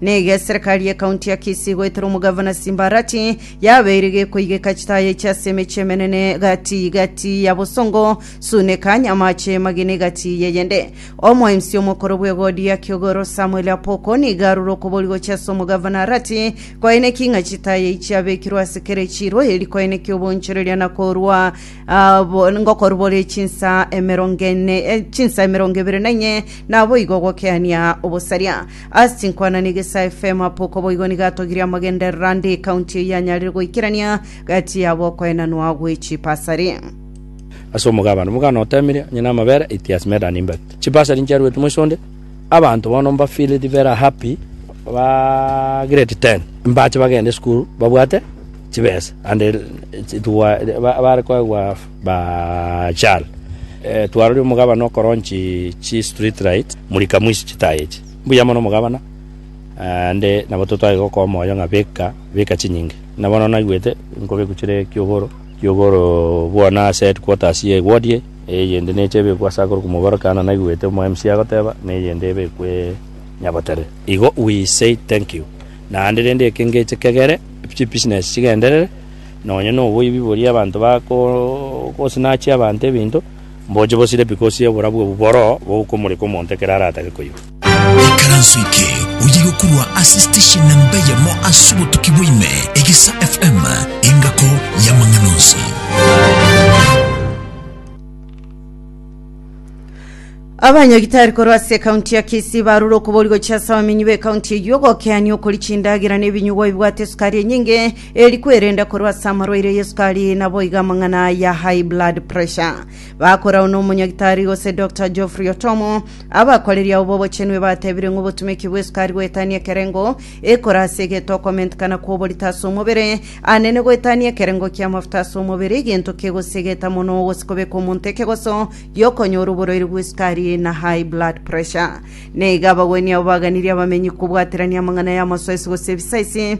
Nigo eserekari y'ekaunti ya Kisii goetera omogavana Simbarati yabeire gekoigeka chitaya echi ase emechi emenene gati gati ya Bosongo, Suneka, Nyamache, Mageni gati y'eyende. Omoemsi omokoro bw'egodi ya Kiogoro Samuel Apoko nigo arure okobori gochia ase omogavana Arati koeneki ng'a chitaya echi chiabekirwe ase kera echiiro eri koeneki obonchoreria na korua ah, bo- ngokorubore chinsa emerongo ene eh, chinsa emerongo ebere na inye naboigo gokeania obosaria. Ase chinkwanani iga ase FM apo uko boigo nigo atogirie amagenderero ande ekaunti eyio anyarire goikerania gati yabo okoenanwa gwe chipasari. Ase omogabane omogana otemire, onye namabere it has made an impact. Chipasari nchiaruete moise onde, abanto bono mba feeled very happy ba grade ten mbache bagende esukuru babwate chibesa and it it wa ba bare koegwa. Baal. Twarorire omogabana okoronchi chistreetlights, murika moisie chitaaya echi. Mbuya mono omogabana, naende nabo totwagete gokoa omoyo ng'a beka, beka chinyinga. Buna bono naigwete, nkobekwa chire Kiogoro, Kiogoro bono ase headquarters ye ward eye, eyende neche ebekwe ase akorokwa Mobere kana naigwete omo MC agoteba, na eyende ebekwe Nyabotere. Igo we say thank you. Naende rende eke ngeche kegere, chibusiness chigenderere. Nonya noboibi boria abanto bakosinachia abanto ebinto, mboche bosire pi gose oborabu obo boro bokomoreka omonto ekero aratake koigwa. Ekaranso eke oye gokorwa ase station namba eyemo ase obotuki bwaime, Egesa FM, engako y'amang'ana onsi. Abanyagitari korwa ase ekaunti ya Kisii barure okobori gochia ase abamenyi b'ekaunti eyio gokeania okori chindagera na ebinyugwa bibwate esukari enyinge Eri kwerenda korwa ase amarwaire ya esukari na boigo amang'ana ya high blood pressure. Bakorao nomonyagitari gose Dr. Geoffrey Otomo, abakoreri ao b'obochenu ebatebire ng'a obotumeki bw'esukari goetania ekerengo ekore ase egento okomentekana kw'oborito ase omobere, anene goetania ekerengo ki'amafuta ase omobere, egento kegosegeta mono gose kobeka omonto ekegoso gi'okonyora oborwaire bw'esukari na high blood pressure. Naiga abagwenia abo baganirie abamenyi kobwaterania amang'ana y'amasoesi gose ebisaisi,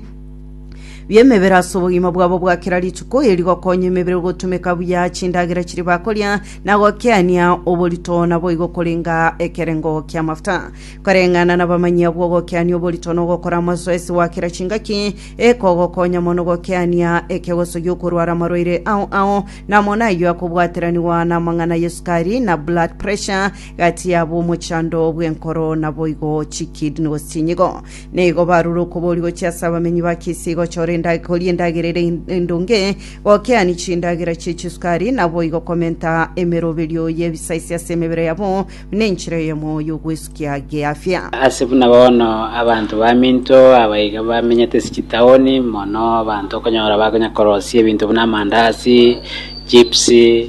bi'emebere ase obogima bwabo bwa kera rituko, eri gokonya emebere gotumeka buya chindagera chiria bakoria, na gokeania oborito naboigo korenga ekerengo ki'amafuta. Koreng'ana nabamanyi abwo ogokeania oborito na ogokora amasoesi gwa kera chingaki, ekogokonya mono gokeania ekegoso gi'okorwara amarwaire ao ao, na amo nayio akobwateranigwa namang'ana ya esukari na blood pressure, gati yabo omochando bw'enkoro naboigo chikidney gose chinyigo. Nigo barure okobori gochia ase abamenyi ba Kisi gochora enda- koria endagera ere en- endonge, gokeani chindagera chie chisukari, naboigo komenta emeroberio y'ebisaisi ase emebere yabo, buna enchera eyemo y'ogwesukia geafia. Ase buna bono abanto baminto aba iga bamenyete ase chitaoni, mono abanto okonyora bakonya korosia ebinto buna amandasi, chips,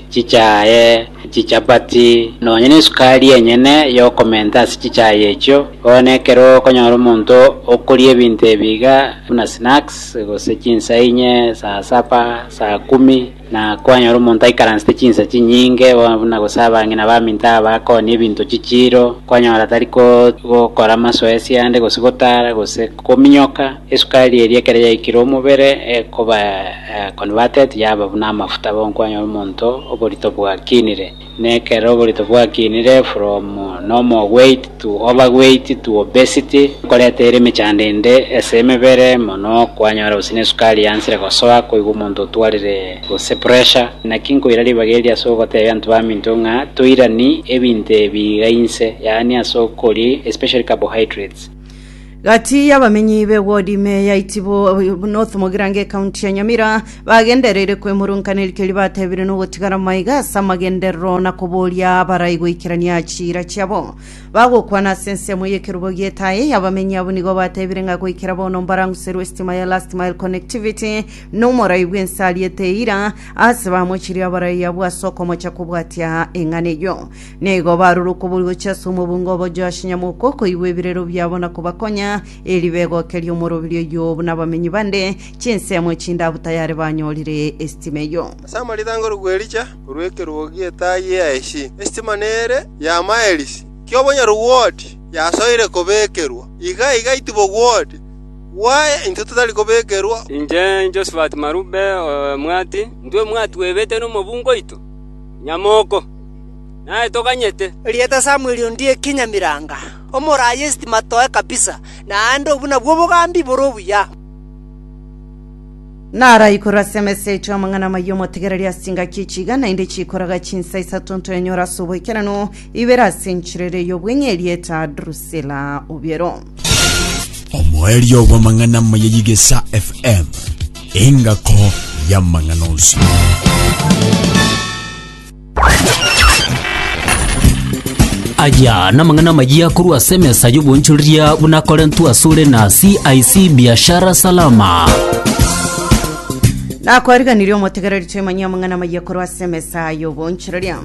chichae, Chichapati, nonya nesukari enyene y'okomenta ase chichae echio. Bono ekero okonyora omonto okoria ebinto ebi iga buna snacks, gose chinsa inye, saa saba, saa kumi, na kwanyora omonto aikaransete chinsa chinyinge, bono buna gose abang'ina baminto aba bakooni ebinto chichiiro, kwanyora tari gokora amasoesi ande, gose gotara, gose kominyoka. Esukari eria ekero yaikire omobere ekoba converted yaba buna amafuta bokwanyora omonto oborito bwakinire. Na ekero oborito bwakinire from normal weight to overweight to obesity ekoreta ere emechando ende ase emebere mono kwanyora gose nesukari yansire gosoa koigwa omonto otwarire gose pressure. Naki nkoira ribaga eri ase ogotebia abanto baminto ng'a toirani ebinto ebi iga inse yaani ase okoria especially carbohydrates. Gati y'abamenyi b'ewodi ime ya Itibo North Mogirango ekaunti ya Nyamira bagendereire kwemurunkaneria keria batebire na ogotigara maiga ase amagenderero na koboria abarai goikerania chiira chiabo. Bagokwana ase ensemo y'ekerubo gi'etaai, abamenyi abwo nigo batebire ng'a goikera bono mbaranguserwe esitima ya Last Mile Connectivity na omorai bw'ense ariete eira ase bamochirie abarai abwo ase okomocha kobwatia eng'ana eyio. Nigo barure okobori gochia ase omobunga obo Joashi nyamoko okoigwa ebirero biabo na kobakonya, eeri begokerie omoroberio oyio buna abamenyi bande, chinsemo echindabu tayare banyorire esitima eyio. Ase amaritango rogwa Elija korwa ekerogo gi'etaai ya Eshi, esitima nere ya maelisi ki'obonyarugwoti yasoire kobekerwa. Iga iga itibogwoti gwaye intwe totari kobekerwa. Inche Josafati Marube omwati, intwe mwatwebete nomobunga oito nyamoko. naye toganyete. Erieta Samweli ondie ekinyamiranga, omoraa y'esitima toe kabisa, naende obwo nabwo obogambi bore obuya. Naraikure ase emesa ya Echia amang'ana amayia omotegereria ase chingaki echiga, naende chiikoraga chinsa isato ntoenyore ase oboikeranu, ibere ase enchera ere y'obwenyi, erieta Drusila obiero. Omoerio bw'amang'ana amaya y'Igesa FM, engako y'amang'ana onsi. Aya namang'ana amayia korwa ase emesa y'obonchoreria buna Korentu asore na CIC Biashara Salama. nakwariganirie omotegereri toimanyia amang'ana amayia korwa ase emesa y'obonchoreria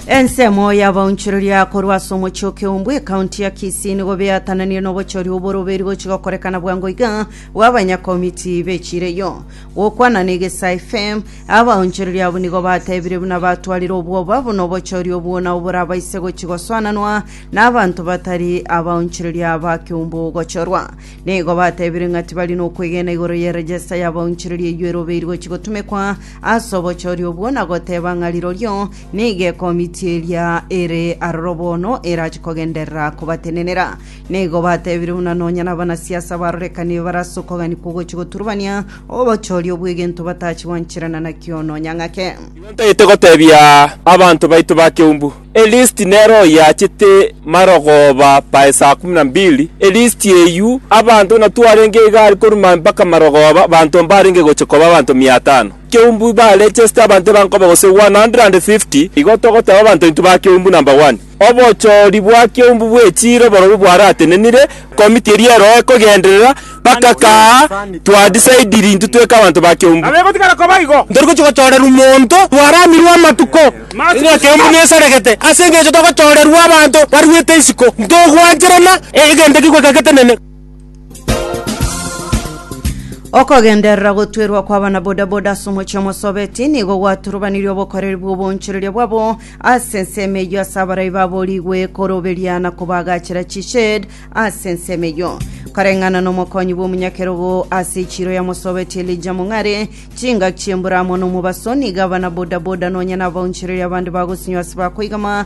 ensemo y'abaonchoreria korwa ase omochie okeumbu ekaunti ya kisii nigo beatananire n'obochori oborobeiri gochi gokorekana bwango iga bw'abanyakomiti b'echireyo Gokwana n'egesaai fem. Abaonchoreria abwo nigo batebirie buna batwarire obwoba buna obochooria obwo nao borabaise gochia gosoananwa n'abanto batari abaonchoreria ba keumbu gochorwa. Nigo batebire ng'a tibari nokwegena igoro ye regesta y'abaonchoreria eyio erobeiri gochia gotumekwa ase obochooria obwo na goteba ng'a rirorio nigo ekomiti eria ere aroro bono erache kogenderera kobatenenera. Nigo batebire buna nonya nabanasiasa barorekanirie barasokoganigwa ogochia goturubania obochori obw'egento batachia gwancherana nakio nonya ng'ake. Igo ntagete gotebia abanto baito ba Kiumbu, elisiti nero oyo yachete marogoba pae saa kumi na mbili, elisiti eyio abanto buna twarenge iga aria korwa mpaka marogoba abanto mbarenge gochia koba abanto mia atano. Kiumbu barechesite abanto ebankoba gose 150, igo togoteba abanto baito ba Kiumbu number one. Obochoori bwa kiombu bwe chiiro borobwo bwaratenenire, komiti eria eroa ekogenderera, bakakaa, Twadisaidiri intwe tweke abanto ba kiombu. Ntori gochia gochoorerwa monto bwaramirwe amatuko, ng'a kiombu nesaregete, ase engencho togochoorerwa abanto barwete isiko, ntogwancherana, egento ekigweka getenene. Okogenderera gotwerwa kw'abana bodaboda ase omochie omosobeti nigo gwaturubanirie obokoreri bw'obonchoreria bwabo ase ensemo eyio ase abarai babo rigwe koroberia na kobagachera chished ase ensemo eyio koreng'ana n'omokonyi bw'omonyakerogo ase echiro ya mosobeti elija mong'are chingaki chi'embura amo n'omobaso nigo abana bodaboda nonya na abaonchoreria abande bagosinywa ase bakoigama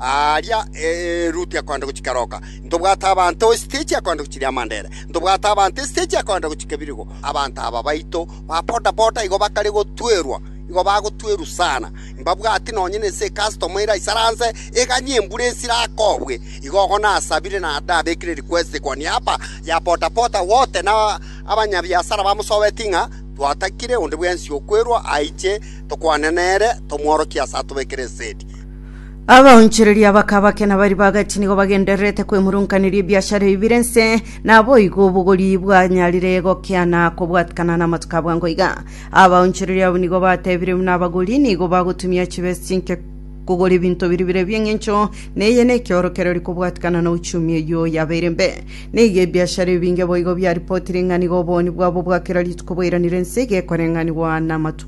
Aaria eruti akoenda gochika roka, ntobwate abanto esiteji akoenda gochiria amandera, ntobwate abanto esiteji akoenda gochika ebirigo. Abanto aba baito ba bodaboda igo bakare gotwerwa, igo bagotwerwa sana. Mbabwati nonye nense ekasitoma ere aisaranse eganye embura esire akobwe. Igo ogo nasabire na ndabekire request koni aba ya bodaboda wote na abanyabiasara bamosobeti ng'a twatakire onde bwensi okwerwa aiche tokwane nere tomworokie ase atobekere esegi. Abaonchoreria bakabake na bari bagati nigo bagendererete kwemurunkaneria ebiashara ebi bire nse, naboigo obogori bwanyarire gokea na kobwatikana n'amatuko abwango iga. Abaonchoreria abo nigo batebire buna abagori nigo bagotumia chibesa chinke kogora ebinto biri bire ebi'eng'encho, na eye nekiorokererio kobwatikana na uchumi eyio yabeire mbe. Nigo ebiashara ebinge boigo biaripotire ng'a nigo oboni bwabo bwa kera rituko bwairanire ense iga ekoreng'anigwa n'amatuko.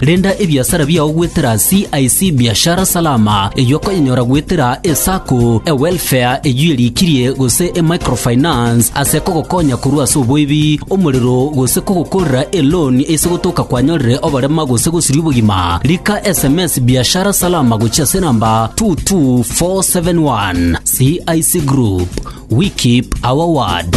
Renda ebiasara biao goetera CIC Biashara Salama, eyio okonyenyora goetera eSacco, eWelfare eyio erikirie, gose eMicrofinance ase kogokonya korwa ase oboibi, omorero, gose kogokorera eloan ase gotoka kwanyorire oborema gose gosiria obogima. Rika sms Biashara Salama gochia ase enamba 22471. CIC Group, we keep our word.